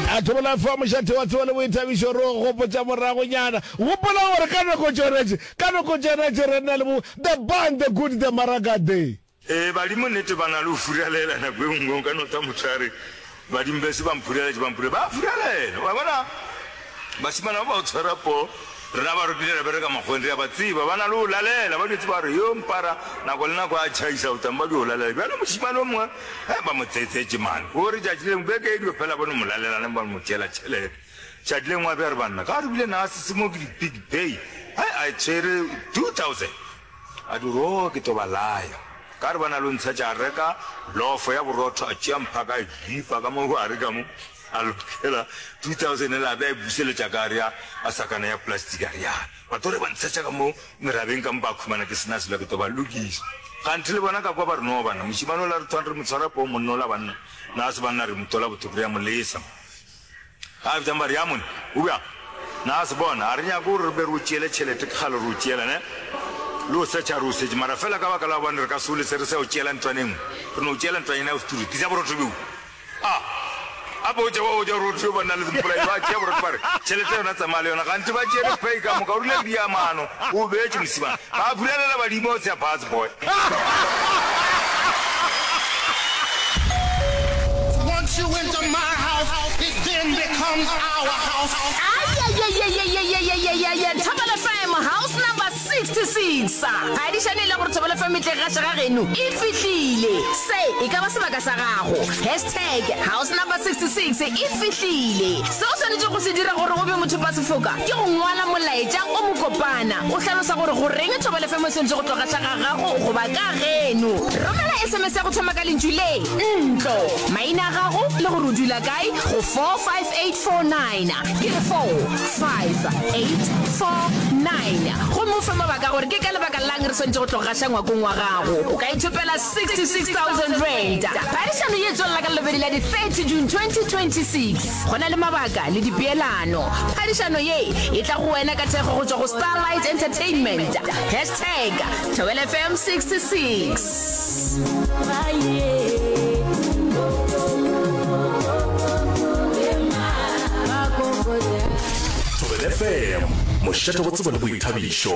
A thobola fa mošate wa tsebo le boithabišo, re o gopotša moragonyana. Gopola gore ka nako tšona tše, ka nako tšona tše re na le bo The Band, The Good, The Maraga, The. Ee, badimo nnete ba na le go furalela. Nako e nngwe o ka no tla motho a re, Badimo bese ba mphuraletše, ba mphuraletše. Ba a furalela, wa bona. Bašemana ba ba go tshwara poo, rena ba rokile ra bereka makgoweng, re a ba tseba. Ba na le go lalela, ba dutše ba re, Yo, Mpara, nako le nako a tšhaisa, o tla mpa di go lalela. Bjale mošemane o mongwe Ge ba mo tsetsetše man o re tšatši lengwe beke e dio fela bone molalelane ba mo tšeela tšhelete. Tšatši lengwe a be a re banna ga re bile na se se mo ke di big pay hai a tshwere 2000 a di ro ke to ba laya ka re ba na lo ntsha tša reka lofo ya borotho a tšea mpha ka jipa ka mo gare ka mo a lokela 2000 la be a buseletša ka re ya a sakana ya plastic a re ya Ba tlo re ba ntshetša ka mo merabeng ka mo ba khumana ke sena selo ke to ba lokiša. Kganthe le bona ka kwa ba re no bana mošimane o la re thwang re mo tshwara poo monna o la banna na se banna re mo tola botho re ya mo lesa. Ga fetšang ba re ya mone o bjang na se bona a re nyake gore re be re o tšeele tšhelete ke kgale re o tšeela ne le o setšha re o setše mara fela ka baka la gobane re ka se o lese re sa o tšeela ntlwane nngwe re no o tšeela ntlwanyana ya go se turu tisa borotho bjoo A A botša ba botša Ruth yo ba nna le mpolai ba tšea borotho ba re, Tšhelete yona tsamaya le yona, kganthe ba tšere pay ka moka, o rile di ya mano, o beetše mosimane. Ba bulelela badimo o tsea bus boy. 66 sa ga di swanele gore thobelo fa metleng ga šega geno e fihlile. Se e ka ba sebaka sa gago. Hashtag House Number 66 e fihlile. Se o swanetšego go se dira gore o be mothopasefoka ke go ngwala molaetša o mokopana o hlalosa gore goreng thobelo fm e swanetše go tloga xa ga gago goba ka geno. Romela sms ya go thoma ka lentšu le, ntlo, maina a gago le gore o dula kae go 45849. ke 45849 gomme o fe mabaka gore ke ka lebaka lang re swantše go tlo gaša ngwakong wa gago o ka ithopela 66000 rand phadišano ye tswelela ka lobedi la di-30 june 2026 go na le mabaka le dipeelano phadišano ye e tla go wena ka thekgo go tšwa go starlight entertainment hashtag thobelfm 66 Thobelefm mošate go tsebo le boithabišo